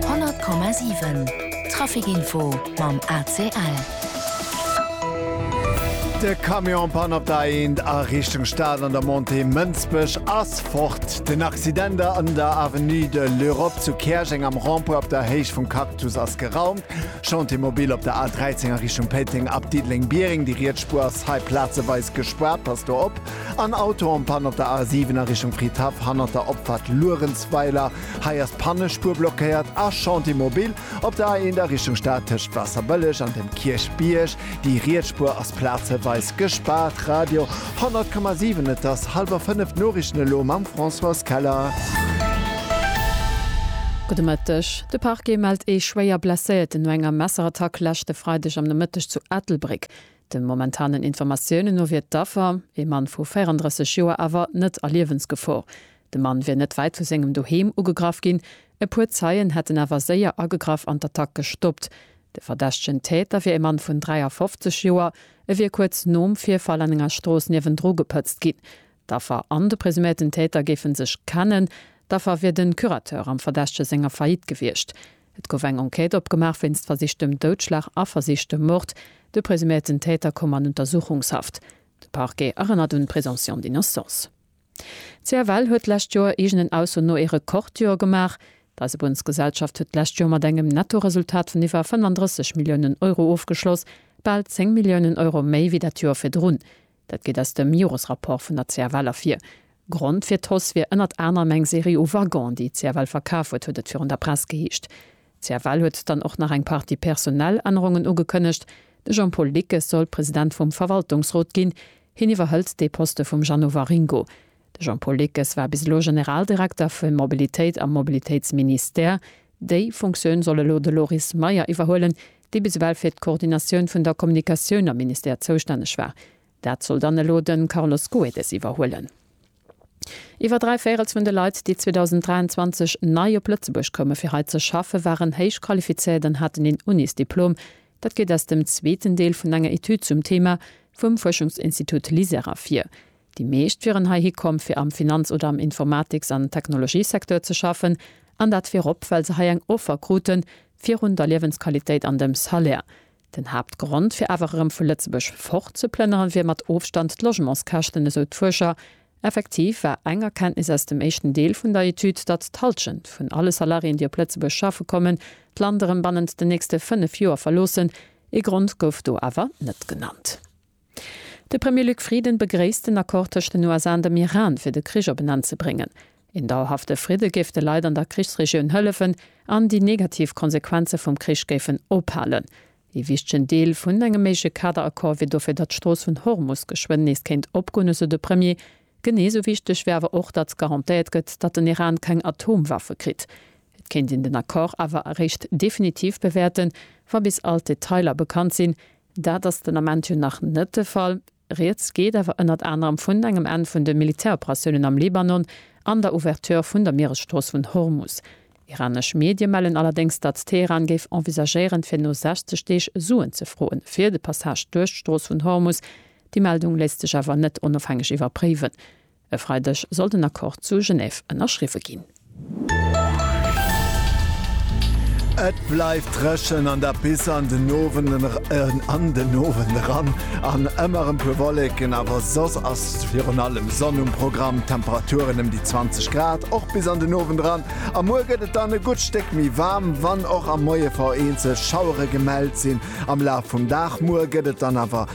100,7 Trafic Info mam ACL. De Camion Panne op der A1 a Richtung Stad an der Montée Mënsbech ass fort. Den Accident an der Avenue de l'Europe zu Käerjeng am Rond-point op der Héicht vum Cactus ass geraumt. Chantier mobile op der A13 a Richtung Péiteng ab Diddeleng-Biereng. Déi riets Spuer ass hei plazeweis gespaart, passt do op. En Auto en Panne op der A 7 a Richtung Fridhaff hannert der Opfahrt Luerenzweiler. Hei ass d'Pannespuer blockéiert. A Chantier mobile op der A 1 a Richtung Stad tëscht Wasserbëlleg an dem Kierchbierg. Déi riets Spuer ass plazeweis gespaart. Radio 100,7 Et ass hallwer 5, d'Noriichten elo mam Françoise Keller. Gudde Mëtteg. De Parquet mellt ee Schwéierblesséierten no enger Messerattack leschte Freideg am Nomëtteg zu Ettelbréck. De momentanen Informatiounen no wier d'Affer, ee Mann vu 34 Joer, awer net a Liewensgefor. De Mann wier net wäit vu sengem Doheem ugegraff ginn. E puer Zeien hätten awer séier agegraff an d'Attack gestoppt. De verdächtegen Täter wier e Mann vun 53 Joer. E wier kuerz nom Virfall an enger Strooss niewendru gepëtzt ginn. D'Affer an de presuméierten Täter géife sech kennen. D'Affer wier de Curateur am Verdächtege senger Faillite gewiescht. Et gouf eng Enquête opgemaach wéinst versichtem Doudschlag a versichtem Mord. De presuméierten Täter koum an Untersuchungshaft. De Parquet erënnert un d'Présomption d'innocence. D'CFL huet d'lescht Joer eegenen Ausso no ee Rekordjoer gemaach. D'Eisebunnsgesellschaft huet d'lescht Joer mat engem Nettoresultat vun iwwer 35 Milliounen Euro ofgeschloss, bal 10 Milliounen Euro méi wéi dat Joer virdrun. Dat geet aus dem Joresrapport vun der CFL ervir. Grond fir d'Hausse wier ënnert anerem eng Serie u Waggonen, déi d'CFL verkaf huet, huet et virun der Press geheescht. D'CFL huet dann och nach eng Partie personell Ännerungen ugekënnegt. De Jean-Paul Dickes soll President vum Verwaltungsrot ginn. Hien iwwerhëlt de Poste vum Jeannot Waringo. De Jean-Paul Dickes war bis elo Generaldirekter fir Mobilitéit am Mobilitéitsministère. Déi Funktioun soll elo de Loris Meyer iwwerhuelen, déi bis ewell fir d'Koordinatioun vun der Kommunikatioun am Ministère zoustänneg war, dat soll dann elo de Carlos Goedes iwwerhuelen. Iwwer dräi Véirels vun de Leit, déi 2023 nei op Lëtzebuerg koume fir hei ze schaffen, waren héich qualifizéiert an haten een Unisdiplom. Dat geet aus dem zweeten Deel vun enger Etüd zum Theema vum Fuerschungsinstitut LISER ervir. Déi meescht wieren heihi komm, fir am Finanz oder am Informatiks an Technologiesecteur ze schaffen, an dat virop, well se hei eng Offer kruten, virun der Liewensqualitéit an dem Salaire. Den Haaptgrond, fir awer erëm vu Lëtzebuerg fort ze plënneren, wier mat Ofstand d'Logementskäschten, esou d'Fuerscher. Effektiv war eng Erkenntnis aus dem éischten Deel vun der Etüd, datt d'Hallschent vun alle Salariéen, déi op Lëtzebuerg schaffe kommen, d'Land erëm bannent den nächste fënnef Joer verloossen. Ee Grond gouf do awer net genannt. De Premier Luc Frieden begréisst den Accord tëscht den USA an dem Iran, fir de Krich op en Enn ze bréngen. Een dauerhafte Fridde géif de Leit an der Krichsregioun hëllefen an déi negativ Konsequenze vum Krich géifen ophalen. Ee wichtegen Deel vun engem méigleche Kaderaccord wier dofir, datt d'Strooss vun Hormus geschwënn nees kéint opgoen, esou de Premier. Genee esou wichteg wier awer och, datt garantéiert gëtt, datt den Iran keng Atomwaffe kritt. Et kéint een den Accord awer eréischt definitiv bewäerten, wa bis all d'Detailer bekannt sinn. Dat ass den Ament jo nach net de Fall. Rieds geet awer ënnert anerem vun engem Enn vun de Militäroperatiounen am Libanon an der Ouverture vun der Mieresstrooss vun Hormus. Iranesch Medie mellen allerdéngs, datt Teheran géif envisagéieren, fir no 60 Deeg Suen ze froen, fir de Passage duerch d'Strooss vun Hormus. Déi Meldung léisst sech awer net onofhängeg iwwerpréiwen. E Freideg soll den Accord zu Genève ënnerschriwwe ginn. Et bleift dréchen an der bis an den Owend eran an den Owend eran an ëmmer e puer Wolleken, awer soss ass virun allem Sonn um Programm. D'Temperaturen ëm déi 20 Grad och bis an den Owend eran. Am Muer gëtt et dann e gutt Stéck méi waarm, wann och am Moie vereenzel Schauere gemellt sinn am Laf vum Dag. Muer gëtt et dann awer